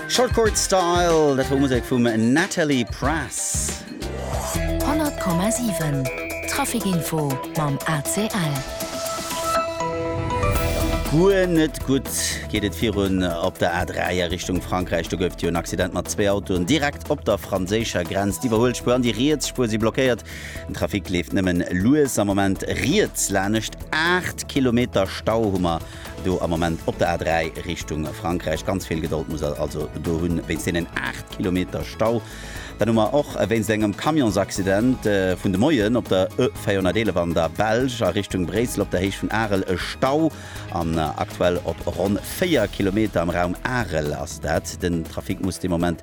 Short Chord Style, dat wor Musek vum Natalie Prass. 100,7 Trafic Info mam ACL. Guer net gutt geet et virun op der A3 a Richtung Frankräich. Do gouf et jo en Accident mat zwee Autoen direkt op der franséischer Grenz. D'Iwwerhuelspuer an déi riets Spuer si blockéiert. Den Trafic leeft nëmmen lues am Moment riets lanescht. Aacht Kilometer Stau hu mer. Do am Moment op der A3 Richtung Frankräich ganz vill Gedold muss der also do hunn, wéinst deenen 8 Kilometer Stau. Dann hu mer och wéinst engem Camionsaccident vun de Moien op der E 411 an der Belsch a Richtung Bréissel op der Héicht vun Arel e Stau. An aktuell op ronn 4 Kilometer am Raum Arel ass dat. Den Trafic muss de Moment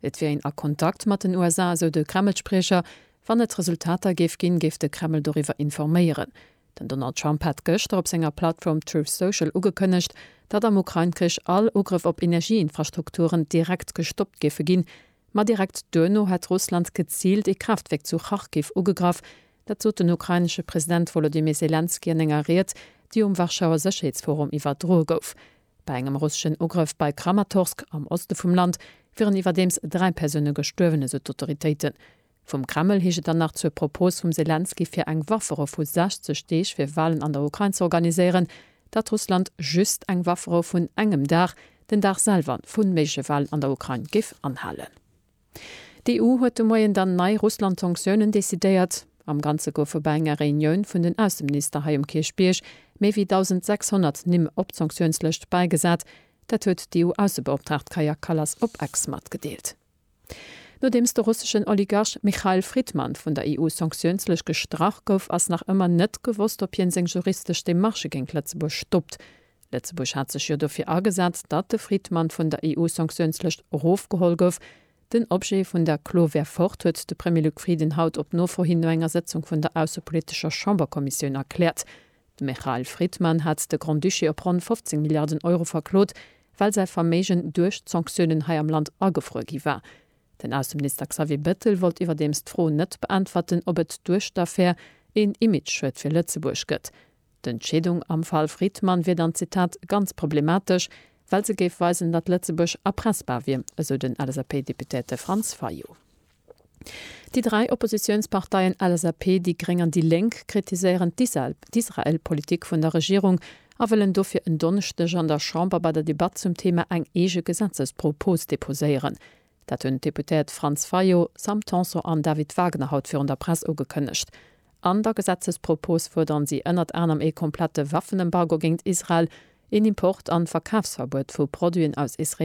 Et wier een a Kontakt mat den USA, esou de Kreml-Spriecher. Wann et Resultater géif ginn, géif de Kreml doriwwer informéieren. Den Donald Trump hat gëschter op senger Plattform Truth Social ugekënnegt, datt am Ukrain-Krich all Ugrëff op Energieinfrastrukturen direkt gestoppt géife ginn. Ma direkt duerno hätt Russland geziilt ee Kraaftwierk zu Charkiw ugegraff. Dat sot den ukrainesche President Wolodymyr Selenskyj an enger Ried, déi um Warschauer Sécherheetsforum iwwerdroe gouf. Bei engem russeschen Ugrëff bei Kramatorsk am Oste vum Land wieren iwwerdeems dräi Persoune gestuerwen, esou d'Autoritéiten. Vum Kreml heescht et dann nach zur Propos vum Selenskyj fir eng Wafferou vu 60 Deeg fir Walen an der Ukrain ze organiséieren, datt Russland just eng Wafferou vun engem Dag, den Dag selwer vun méigleche Walen an der Ukrain, géif anhalen. D'EU huet de Moien dann nei Russland-Sanktiounen decidéiert. Am Ganze goufe bei enger Reunioun vun den Ausseminister hei um Kierchbierg méi wéi 1.600 Nimm op d'Sanktiounslëscht bäigesat. Dat huet d'EU-Aussebeoptraagt Kaja Kallas op Ex matgedeelt. Nodeems de russeschen Oligarch Mikhail Fridman vun der EU-Sanktiounslëscht gestrach gouf, ass nach ëmmer net gewosst, ob hien seng juristesch Demarchë géint Lëtzebuerg stoppt. Lëtzebuerg hat sech jo dofir agesat, datt de Fridman vun der EU-Sanktiounslëscht erofgeholl gouf. Den Objet vun der Klo wär fort, huet de Premier Luc Frieden haut op Nofro hin no enger Sëtzung vun der aussepolitescher Chamberkommissioun erkläert. De Michael Fridman hat de Grand-Duché op ronn 15 Milliarden Euro verklot, well säi Verméigen duerch d'Sanktiounen hei am Land agefruer gi war. Den Ausseminister Xavier Bettel wollt iwwerdeems d'Fro net beäntwerten, ob et duerch d'Affär een Image-Schued fir Lëtzebuerg gëtt. D'Entscheedung am Fall Fridman wier dann, Zitat, ganz problematesch, well se géif weisen, datt Lëtzebuerg erpressbar wier, esou den LSAP-Deputéierte Franz Fayot. Déi dräi Oppositiounsparteien LSAP, déi gréng an déi lénk kritiséieren d'Israel-Politik vun der Regierung a wëllen dofir en Donneschdeg an der Chamber bei der Debatt zum Thema eng eege Gesetzespropos deposéieren. Dat hunn d'Deputéiert Franz Fayot, Sam Tanson an David Wagner haut virun der Press ugekënnegt. An der Gesetzespropos fuerderen si ënnert anerem ee komplette Waffenembargo géint Israel, een Import an Verkafsverbuet vu Produiten aus israeleschem Land.